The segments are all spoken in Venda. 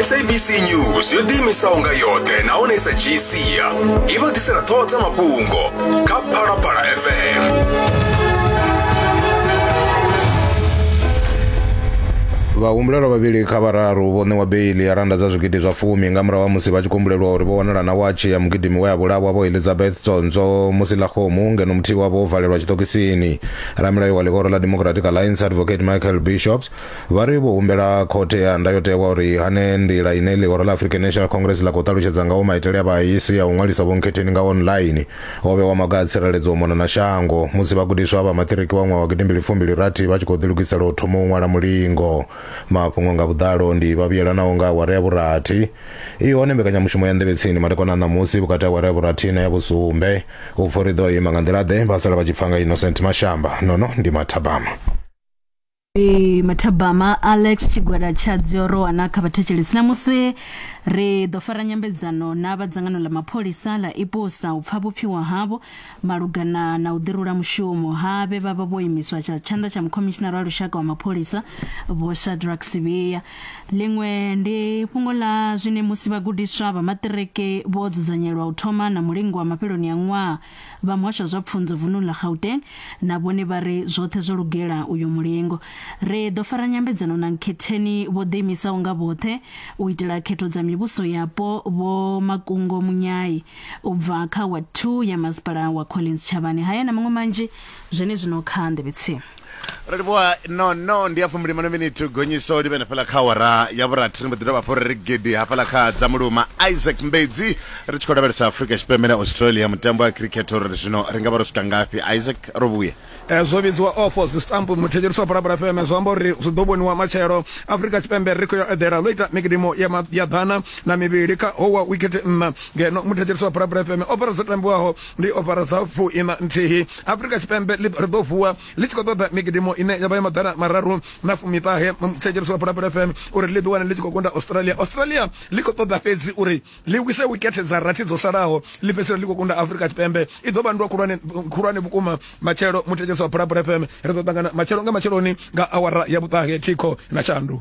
sabc news yo ḓiimisaho nga yoṱhe nahone sa dzhii sia i vha ḓisela ṱhoho dza mafhungo kha phalaphala fm vhahumbulelwa vhavhili kha vhararu vho ṋewa beili ya randa dza zwigidi zwa fumi nga murahu ha musi vha tshi kumbulelwa uri vho wanala na watshi ya mugidimi we a vhulawa vho elizabeth tsonzo musi ḽa khomu ngeno muthihi wavho wo valelwa tshiṱokisini ramilayo wa ḽihoro ḽa democratic alliance advocate michael bishops vha ri vho humbela khothe ya ndayotewa uri hane nḓila ine ḽihoro ḽa african national congress ḽa khou ṱalutshedza ngaho maitele a vhaisi a u ṅwalisa vhonkhetheni nga online ho vhewa maga a tsireledzo u mona na shango musi vhagudiswa vha maṱiriki wa ṅwaha wa gidimbili fumbili rathi vha tshi khou ḓilugisela u thoma u ṅwala mulingo mafhungo nga vhuḓalo ndi vha vhuyelanaho nga awara ya vhurathi i hone mbekanyamushumo ya nḓevhe tsini madekwana a ṋamusi vhukati ha awara ya vhurathi na ya vhusumbe u pfa uri ḓo ima nga nḓila ḓe vha sala vha tshi pfa nga innocent mashamba nono ndi mathabama Ee, mathabama alex tshigwada tsha dziorowa na kha vhathetshelesi namusi ri ḓo fara nyambedzano na vha dzangano ḽa mapholisa ḽa ipusa u pfa vhupfiwa havho malugana na u ḓirula mushumo ha vhe vha vha vho imiswa tsha tshanḓa tsha mukhomishinara wa lushaka wa mapholisa vho shadrack sivhiya ḽiṅwe ndi fhungo ḽa zwine musi vhagudiswa vha maṱiriki vho dzudzanyelwa u thoma na mulingo wa mafheloni a ṅwaha Vha muhasho wa zwa pfunzo vununi ḽa Gauteng na vhone vha ri zwoṱhe zwo lugela uyo mulingo. Ri ḓo fara nyambedzano na nkhetheni vho ḓiimisaho nga vhoṱhe u itela khetho dza mivhuso yapo, Vho Makungo Munyai u bva kha Ward Two ya Masipala wa Collins Tshavhani haya na maṅwe manzhi zwenezwino kha Nḓevhe Tsimu. ro livhuwa no no ndi ya fumbilimano miniti gonyiso ḽi vhe na fhaḽa kha awara ya vhurathi ri mbo ḓi dovha hafho ri ri gidi hafhaḽa kha dza muluma isaac mbedzi ri tshi khou lavhelesa afrika tshipembe na australia mutambo wa cricket uri zwino ri nga vha ro swika ngafhi isaac ro vhuya Eh, zwo vhidziwa ofo zwi stamp muthetshelisi wa parabara fm zwi amba uri zwi ḓo vhoniwa matshelo afrika tshipembe ri khou ya eḓela ḽo ita mikidimo ya ma- ya ḓana na mivhili kha howa wikete nṋa ngeno muthetshelisi wa parabara fm o fara dzo tambiwaho ndi opara dza fu ina nthihi afurika tshipembe ḽi ri ḓo vuwa ḽi tshi khou ṱoḓa migidimo ine ya vha ya maḓana mararu na fumiṱahe thetshelesi wa pulapula fm uri ḽi ḓiwane ḽi tshi khou kunda australia australia ḽi khou ṱoḓa fhedzi uri ḽi wise wikethe dza rathi dzo salaho ḽi fhedzisela ḽi khou kunda afurika tshipembe i ḓo vhandwa khulwane khulwane vhukuma matshelo muthetshelesi wa pulapula fm ri ḓo ṱangana matshelo nga matsheloni nga awara ya vhuṱahe thikho na shandu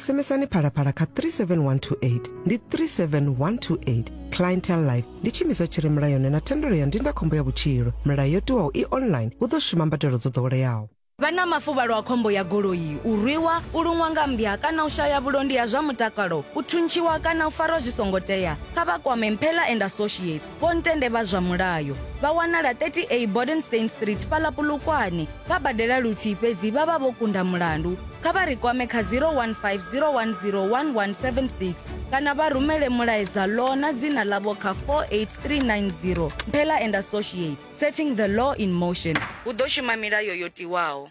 SMSani phalaphala kha 37128 ndi 37128 clientele life ndi tshiimiswa tshi re mulayoni na thendelo ya ndindakhombo ya vhutshilo milayo yo tiwaho i online hu ḓo shuma mbadelo dzo ḓoweleaho vha na mafuvhalo a khombo ya goloi u rwiwa u luṅwa nga mmbya kana u shaya vhulondi ha zwa mutakalo u thuntshiwa kana u farwa zwi songo tea kha vha kwame mphela and associates Vho-ntende vha zwa mulayo vha wanala 30A Bodenstein Street fhaḽa Polokwane. Vha badela luthihi fhedzi vha vha vho kunda mulandu. Kha vha ri kwame kha 015 010 1176 kana vha rumele mulaedza Law na dzina ḽavho kha 48390. Mphela and Associates, Setting the Law in Motion. Hu ḓo shuma milayo yo tiwaho.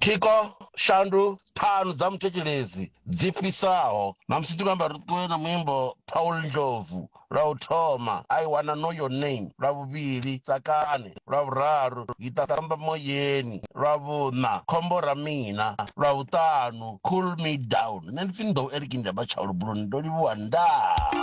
Thikho, shandu, ṱhanu dza muthetshelesi dzi fhisaho. Ṋamusi ndi khou amba ri ṱuwe na muimbo Paul Ndlovu, lwa u thoma, I Wanna Know Your Name, lwa vhuvhili, Tsakani, lwa vhuraru, Giṱamba Moyeni, lwa vhuṋa, Khombo Ra Mina, lwa vhuṱanu, Cool Me Down. Nṋe ndi pfi Nḓou Eric Ndyamba Tshaulu Buluni, ndo livhuwa ndaa.